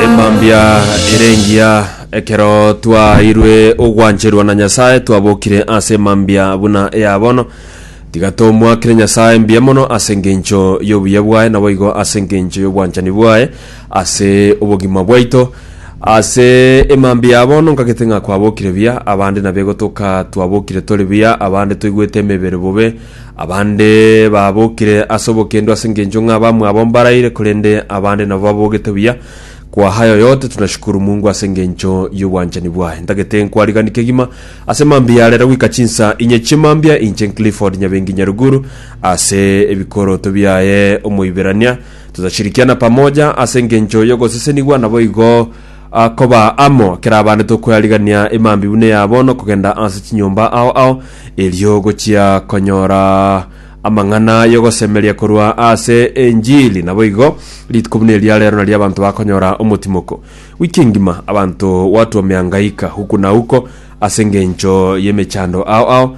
Emambia ere engiya ekero twaeirwe ogwancherwa na Nyasaye twabokire ase emambia buna eya bono. Tiga tomoakere Nyasaye mbuya mono ase engencho y'obuya bwaye, naboigo ase engencho y'obwanchani bwaye ase obogima bwaito. Ase emambia ya bono nkagete ng'a kwabokire buya, abande nabegotoka twabokire tore buya, abande toigwete emebere bobe, Abande babokire ase obokendo ase engencho ng'a abamwabo mbaraire, korende abande nabo babogete buya. Kwaha aye oyote, tunashukuru Mungu ase engencho y'obwanchani bwaye. Ntagete nkwariganie kegima ase mambia ya rero goika chinsa inye chimambia, inche Clifford Nyabengi Nyaruguru, ase ebikoroto biaye Omoiberania. Tutashirikiana pamoja ase engencho y'ogosesenigwa, naboigo Akoba amo, kerabande tokoyarigania emambi buna eya bono, kogenda ase chinyomba ao ao, erio gochia konyora amang'ana y'ogosemeria korwa ase enchili. Naboigo, rituko buna eria rero nario abanto bakonyora omotimoko. Wiki engima abanto gwatwa omeangaika, uko na uko, ase engencho y'emechando ao ao,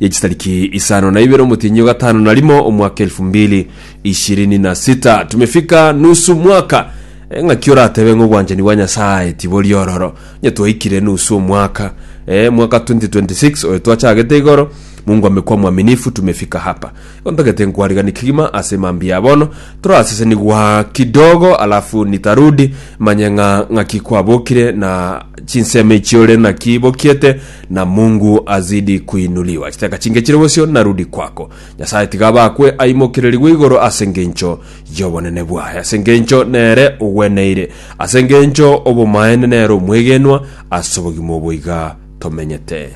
ya chitariki isano na ibere omotienyi o gatano na rimo omwaka elfu mbili ishirini na sita tumefika nusu mwaka eh, ng'aki oratebe ng'a obwanchani bwa Nyasaye tibori ororo onye twaikire nusu omwaka eh, mwaka 2026 oyo twachagete igoro Mungu amekuwa mwaminifu tumefika hapa Ontagete nkwariganie kegima ase mambia bono torasesenigwa kidogo alafu nitarudi manye ng'a ng'aki kwabokire na chinsemo echi ore naki bokiete na mungu azidi kuinuliwa chiteka chinge chire bosio narudi kwako nyasaye tiga abakwe aimokererigwe igoro ase ngencho yobonene bwaye ase ngencho nere ogweneire ase ngencho obomaene nere omwegenwa ase obogima oboiga tomenyete